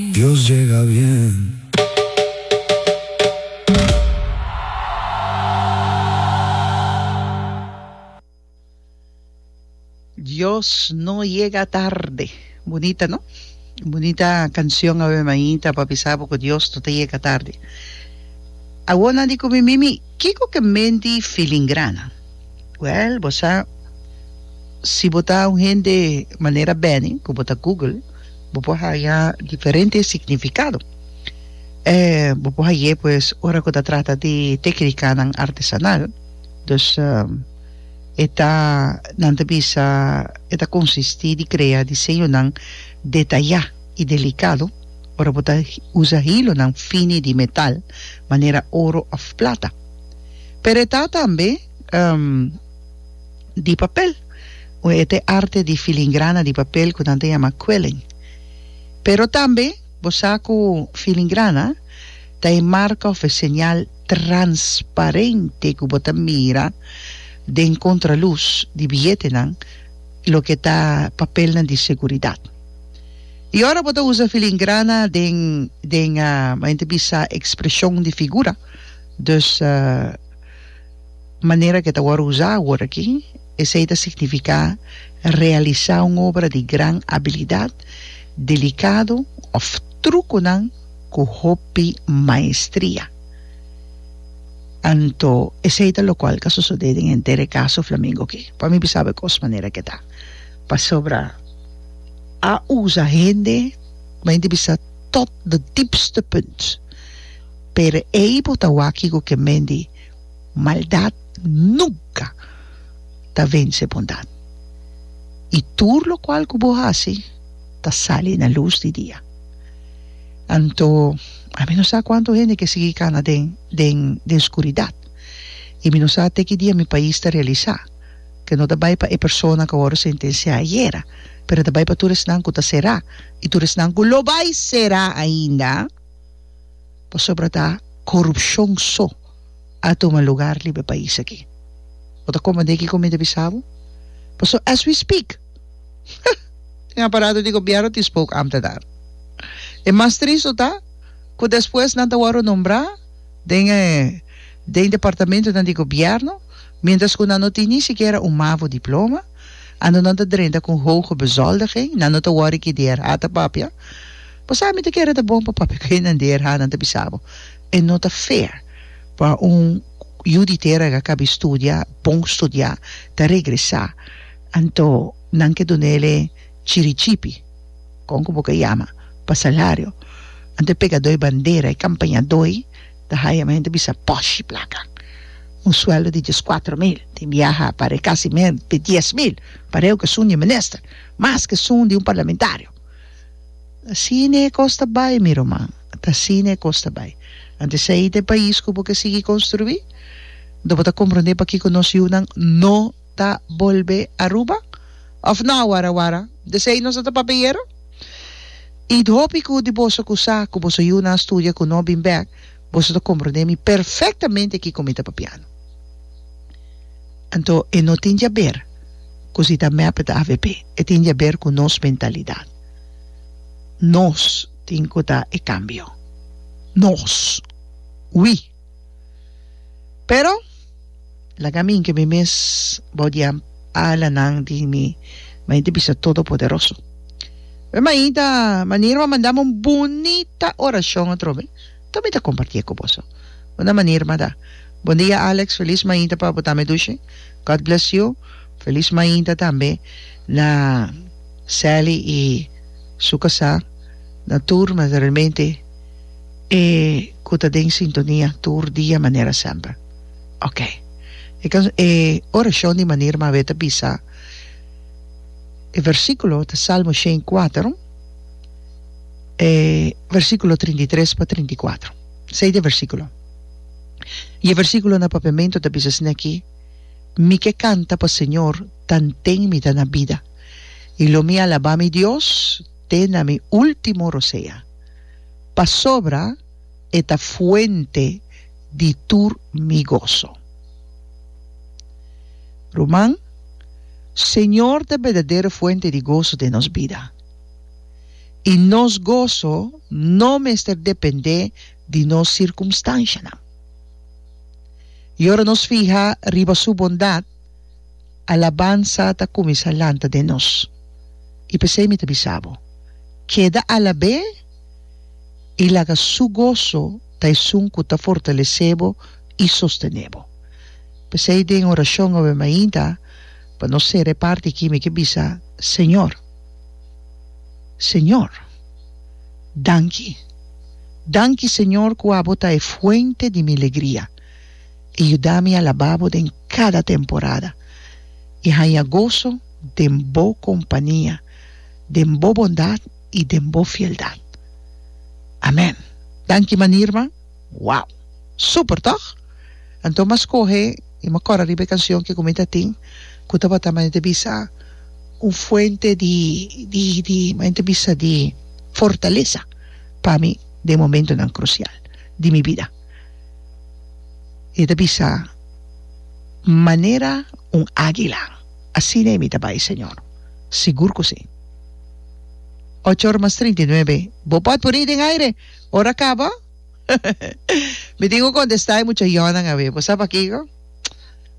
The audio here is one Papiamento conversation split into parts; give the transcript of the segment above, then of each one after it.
Dios jega bien. Dios no yega tarde. Bunita no. Bunita cancion awe mainta pa bisa bo cu Dios no ta yega tarde. Awor di cu mi mimi kico ke menti filingranan. Well bo sa si bo ta un hende manera Benny cu bo ta google. Bo por haya diferente significado. E bo por haye pues ora cu ta trata di tecnicanan artesanal. Dus e ta, nan ta bisa, e ta consisti di crea diseñonan detaya y delicado ora bo ta usa hilonan fini di metal manera oro of plata. Pero e ta tambe. di papel. Un e ta e arte di filingrana di papel ku nan ta yama quilling. Pero tambe bo sa ku filingrana ta e marka òf e señal transparente ku bo ta mira den kontralus di biyetenan loke ta papelnan di seguridat. I ora bo ta usa filingrana den den men ta bisa ekspreshon di figura, dus. manera ku e ta wòrdu usá awor aki, esei ta signifiká realisá un obra di gran abilidat, delikado òf trukunan ku hopi maestria. Anto esei ta lokual ku a sosodé den henter e kaso Flamingo aki. Pa mi bisaba e kos manera ku e ta, pasobra a usa hende ku bai entrebistá tòt de diepste punt, pero ei bo ta wak kiko ku e men di. Maldat nunka ta vense bondat, i tur lokual ku bo hasi ta sali na lus di dia. Anto, ami no sa kuantu hende ke sigui kana den den den skuridat, i mi no sa te ki dia mi pais ta realisá ke no ta bai pa e persona ku a wòrdu sentensiá ayera, pero a ta bai pa tur esnan ku ta será i tur esnan ku lo bai será ainda. pasobra ta korupshon so a tuma lugar riba e pais aki. Bo ta komprendé kiko mi ta bisa bo? Paso as we speak den aparato di gobièrnu tin spoke am ta dar. E mas tristo ta ku despues nan ta wòrdu nombrá den den departamentunan di gobièrnu miéntras ku nan no tin ni sikiera un mavo diploma, anto nan ta drenta ku un hoge bezoldiging, nan no ta wòrdu ki di hèrhata papia. Pasobra mi ta kere ta bon pa papia ku hindander, ha, nan ta bisa bo, e no ta fair pa un yu di tera ku a kabi studia, bon studia, ta regresá, anto nan ke duna el e chirichipi, kon ku bo ke yama, pa salario, anto e pegadó e bandera, e kampañadói ta haya mi a hende bisa pòshi plaka, un sueldo di dies kuater mil, tin biaha para e kasi mer di dies mil, para e'u kesun di e minister, mas kesun di un parlamentario. Ta sine e kos ta bai, mi ruman, ta sine e kos ta bai. Antes esei ta e pais ku bo ke sigui konstruí. Do bo ta komprondé pakiko nos yunan no ta bolbe Aruba? Òf no awor awor? Desei nos a ta papia yero? I hopi ku di boso ku sa ku boso yunan a studia ku no a bin bèk, Boso ta komprondé mi perfektamente kiko mi ta papiando. Anto e no tin djaber ku si ta mep ta avp, e tin djaber ku nos mentalidat. Nos tin ku ta e kambio. Nos. Wi. Pero. Laga mi hinka mi mes bou di alanan di mi mainta bisa Todopoderoso. Mi mainta manera m'a mandami un bunita oracion atrobe ta mi ta comparti e cu boso. Una manera m'a da. Bondia Alex, feliz mainta pa bo tame dushi. God bless you. Feliz mainta tambe na Sally y su casa, na tur, mas realmente e. ku ta den sintonia tur dia manera semper. Ok. E kan e orashon di manir mab'e ta bisa e versíkulo ta Salmo shen i kuater e versíkulo trinta i tres pa trinta i kuater esei ta e versíkulo i e versíkulo na papiamentu ta bisa asina aki mi ke kanta pa Señor tanten mi ta na bida i lo mi alabá mi Dios te na mi último rosea. pasobra e ta fuente di tur mi goso. Ruman, Señor ta berdadero fuente di goso den nos bida, i nos goso no mester dependé di nos sirkumstanshanan. I ora nos fiha riba Su bondat, Alabansa ta kuminsá lanta den nos. I p'esei mi ta bisa bo, Keda alab'é i laga su goso ta esun ku ta fortalesé bo i sostené bo. P'esei den orashon awe mainta pa nos sera e parti akí mi ke bisa, Señor, Señor, danki. Danki Señor ku abo ta e fuente di mi legria i yuda mi alabá bo den. kada temporada i haña goso den bo kompania, den bo bondat i den bo fieldat. Amèn. Danki manirma. Wow! Super, tòg? Anto m'a skohe i m'a kòrda riba e kansion ke ku mi ta tin ku tabata mane ta bisa un fuente di di di mane ta bisa di fortalesa pa mi den momentunan krusial di mi bida. I ta bisa, Manera un águila, asina e mi ta bai, señor. Sigur ku si. Ocho or mas trinta i nuebe, bo por puri den aire ora kaba? Mi tin ku kontestá e muchayonan a mi. Bo sa pakiko?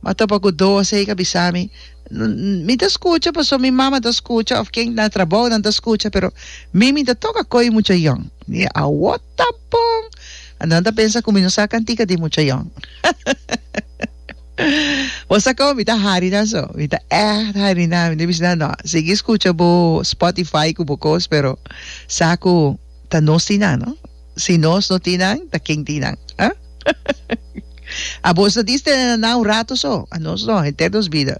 Mi a topa ku dos ei ku a bisa mi, Mi ta skucha pasobra mi mama ta skucha òf ken na trabou nan ta skucha, pero mi mi ta tok a koi muchayon. Mi a wot. Ta bon! Anto nan ta pensa cu mi no sa cantica di muchayon. Bo sa como mi ta harina so. Mi ta echt harina. Mi ta bici nan, no, sigui scucha bo Spotify cu bo cos, pero sa cu ta nos tin nan, no? Si nos no tin nan, ta ken tin nan? Abos ta diste na un rato so. Anos no, henter nos bida.